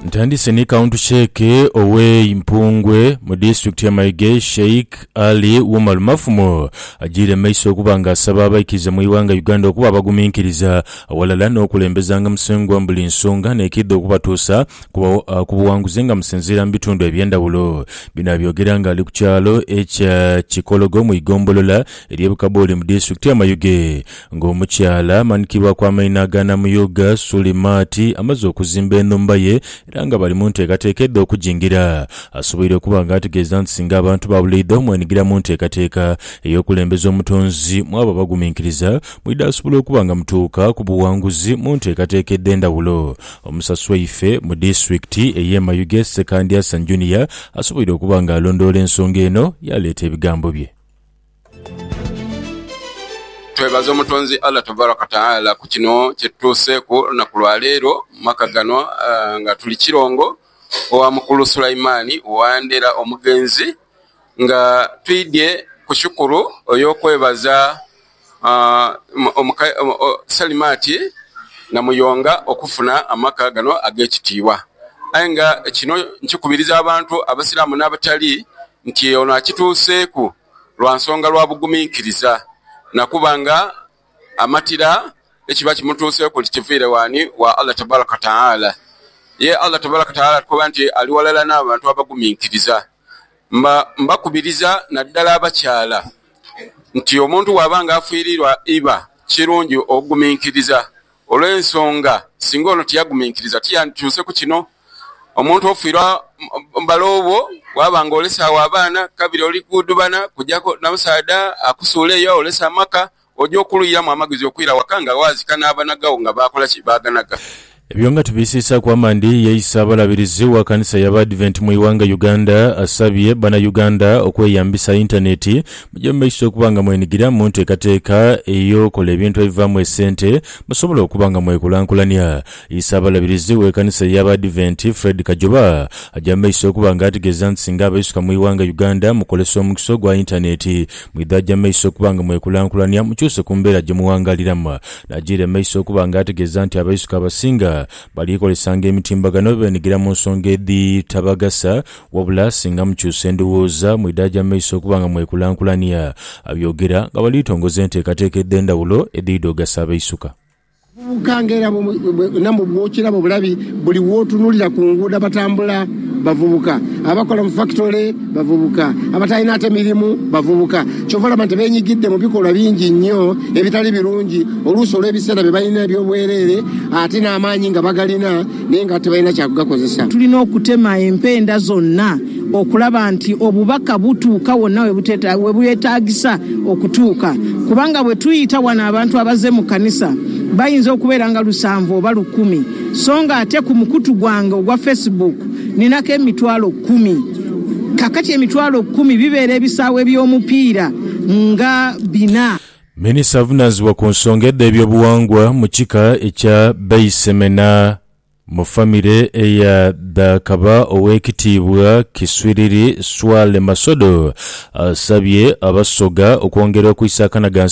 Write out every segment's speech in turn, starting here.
Ntandise ni kawuntu sheeke ow'e Impungwe mu disitulikiti y'e Maige, Sheikh Ali Umar Mafumo agiire mu maiso okuba nga asaba abaikiriza mu ighanga Uganda okuba abaguminkiriza aghalala n'okulembezanga Musengwa mu buli nsonga n'ekiidha okubatuusa ku buwanguzi nga musinziira mu bitundu eby'endhawulo. Bino abyogera nga ali ku kyalo ekya Kikologo mu igombolola ery'e Bukabooli mu disitulikiti y'e Mayuge. Ng'omukyala amanikirwa ku amaina aga Namuyuga, Suli Maati amaze okuzimba enhumba ye era nga bali mu nteekateeka edh'okujingira, asoboire okuba nga ategeeza nti singa abantu baabuleidha omwenigira mu nteekateeka ey'okulembeza omutonzi mwaba abaguminkiriza, mwidha asobola okuba nga mutuuka ku buwanguzi mu nteekateeka edh'endhawulo. Omusasi waife mu disitulikiti ey'e Mayuge, Ssekandi Hassan Junior asoboire okuba nga alondoola ensonga eno yaaleeta ebigambo bye. Twebaza Omutonzi Allah Tabarak Wa Taala ku kino kye tutuuseeku olunaku lwa leero mu maka gano nga tuli Kirongo owa Mukulu Sulaimani Wandera omugenzi nga twidhye ku shukuru ey'okwebaza Salimati Namuyonga okufuna amaka gano ag'ekitiibwa. Aye nga kino nkikubiriza abantu Abasiraamu n'abatali nti ono akituuseeku lwa nsonga lwa buguminkiriza na kuba nga amatira ekiba kimutuuseeku nti kiviire w'ani? Wa Allah Tabaraka Taala. Ye Allah Tabaraka Taala atukoba nti ali walala n'abantu abaguminkiriza. Mba mbakubiriza naddala abakyala nti omuntu bw'aba nga afiiriirwa iba kirungi okuguminkiriza. Olw'ensonga, singa ono tiyaguminkiriza, tiyandikyuse ku kino. Omuntu ofiirwa bale obwo, waaba nga olese agho abaana, kabiri oli kudubana kujaku na musaadha akusuula eyo aolese amaka, oja okulwiramu amagezi okwira waka nga waazika n'abanagagho nga baakola ki? Baaganaga. Ebyo nga tubisiisaaku amandhi, ye Isaabalabirizi wa kanisa y'Abaadiventi mu ighanga Uganda asabye Bannayuganda okweyambisa yintaneeti Mugye mu maiso okuba nga mwenigira mu nteekateeka ey'okola ebintu ebivaamu esente musobole okuba nga mwekulankulania. Isaabalabirizi w'ekanisa y'Abaadiventi, Fred Kajoba agya mu maiso okuba nga ategeeza nti singa abaisuka mu ighanga Uganda mukozesa omukisa ogwa yintaneeti mwidha gya mu maiso okuba nga mwekulankulania mukyuse ku mbeera gye muwangaaliramu. N'ajiira mu maiso okuba nga ategeeza nti abaisuka abasinga bali kozesanga emitimbagano benigira mu nsonga edhitabagasa Wabula singa mukyusa endhowooza, mwidaaja mu maiso okuba nga mwekulankulania, abyogera nga bali tongoza enteekateeka edh'endhawulo edhidha ogasa abaisuka. Abavubuka nga era bwo namwo bw'okiraba obulabi buli w'otunulira ku nguudo abatambula bavubuka, abakola mu fakitole bavubuka, abatalina ate mirimu bavubuka ky'ova olaba nti beenyigidde mu bikolwa bingi nnyo ebitali birungi oluusi olw'ebiseera bye balina eby'obwereere ate n'amaanyi nga bagalina. naye nga tibalina kya kugakozesa. Tulina okutema empenda zonna okulaba nti obubaka butuuka wonna we bwetaagisa okutuuka kubanga bwe tuyita wano abantu abaze mu kkanisa bayinza okubeera nga lusanvu oba lukumi so nga ate ku mukutu gwange ogwa Facebook ninako emitwalo kkumi kakati emitwalo kkumi bibeera ebisaawe by'omupiira nga bina. Minisita avunaanizibwa ku nsonga edh'ebyobughangwa mu kika ekya Beisemena mu famire eya dha kaba Oweekitiibwa Kiswiriri Swale Masodo asabye Abasoga okwongera okwisaakanaga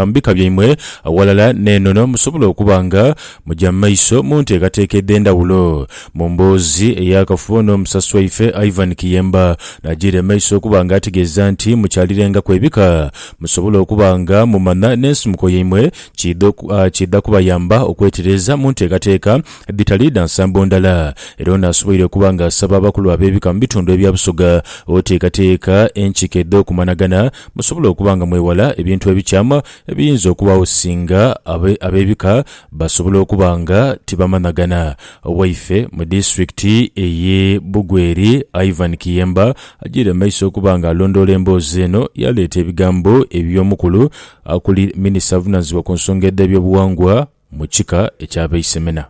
mbika byaimwe aghalala n'enono musobole okuba nga mugya mu maiso mu nteekateeka edh'endhawulo. Mu mboozi ey'akafubo n'omusasi waife Ivan Kiyemba n'ajiira emaiso okuba nga ategeeza nti mukyalirengaku ebika Musobole okuba nga mumanha n'ensimuko yaimwe kiidha kiidha kubayamba okwetereeza mu nteekateeka edhitali dha nsambo ndala. Era ono asoboire okuba nga asaba abakulu ab'ebika mu bitundu ebya Busoga oteekateeka enkiko edh'okumanhagana musobole okuba nga mwewala ebintu ebikyamu ebiyinza okubagho singa ab'ebika basobola okuba nga tibamanhagana. Owaife mu disitulikiti eye Bugweri, Ivan Kiyemba Ajiire mu maiso okuba nga alondoola emboozi eno, yaleeta ebigambo eby'omukulu akuli minisita avunaanyizibwa ku nsonga edh'ebyobughangwa mu kika eky'Abeisemena,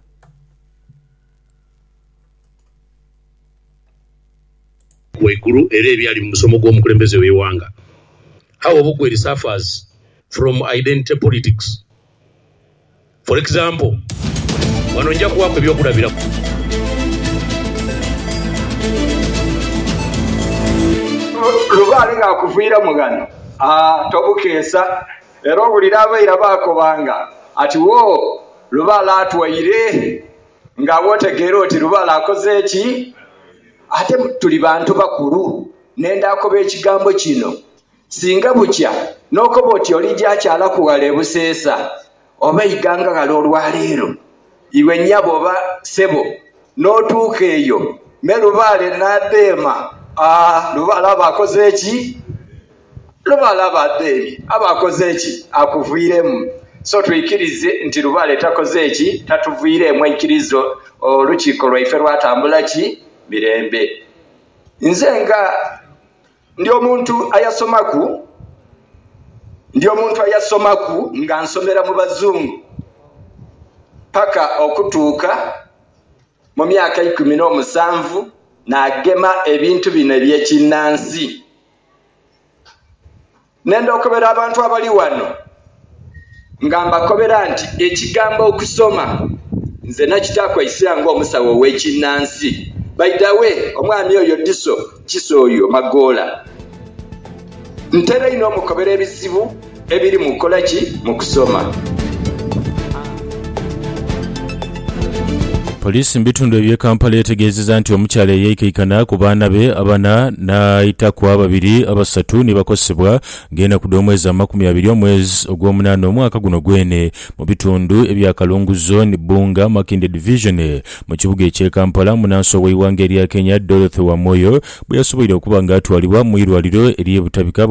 waigulu era ebyali mu musomo gw'omukulembeze w'eighanga, How Obokweri Suffers from Identity Politics For example, ghano nja kuwaaku ebyokulabiraku. Lubaale ng'akuviiramu ghano, tobukeesa era owulire abaira baakoba nga ati wo Lubaale atwaire nga bw'otegeera oti Lubaale akoze ki? Ate tuli bantu bakulu, nenda akoba ekigambo kino Singa bukya n'okoba oti olija kyalaku ghala e Buseesa oba eighanga ghale olwaleero, iwe nyabo oba sebo n'otuuka eyo me Lubaale n'abeema, aa, Lubaale aba akoze ki? Lubaale aba abeemye, aba akoze ki? Akuviiremu. So twikirize nti Lubaale takoze ki? Tatuviireemu. Aikiriza olukiiko lwaife lwatambula ki? Mirembe. Nze nga Ndi omuntu ayasomaku, ndi omuntu ayasomaku nga nsomera mu bazungu paka okutuuka mu myaka eikumi n'omusanvu naagema ebintu bino eby'ekinnansi. Ne ndhokobera abantu abali ghano nga mbakobera nti ekigambo okusoma nze nakitaaku eisira ng'omusawo ow'ekinnansi. By the way, omwami oyo Diso, Kiso oyo, Magoola, ntera inho omukobera ebizibu ebiri mu kukola ki? Mu kusoma. Poliisi mu bitundu eby'e Kampala etegeezezza nti omukyala eyaikaikana ku baana be abana n'aitaku ababiri abasatu ni bakosebwa ng'enaku dh'omwezi amakumi abiri omwezi ogw'omunaana omwaka guno gwene mu bitundu ebya Kalungu Zone, Bbunga, Makindye Division mu kibuga eky'e Kampala munaansi ow'eighanga erya Kenya Dorothy Wamoyo bwe yasoboire okuba nga atwalibwa mu irwaliro ery'e Butabika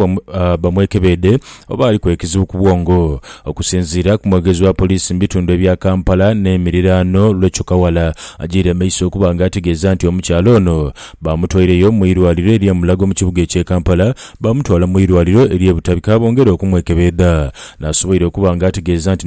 bamwekebeedhe oba aliku ekizibu ku bwongo. Okusinziira ku mwogezi wa poliisi mu bitundu ebya Kampala n'emiriraano Recho Kawala agyiire maiso okuba nga ategeeza nti omukyala ono baamutwaireyo mu irwaliro erye Mulago mu kibuga ekye Kampala baamutwala mu irwaliro erye Butabika bongere okumwekebeedha nasoboire okuba nga ategeeza nti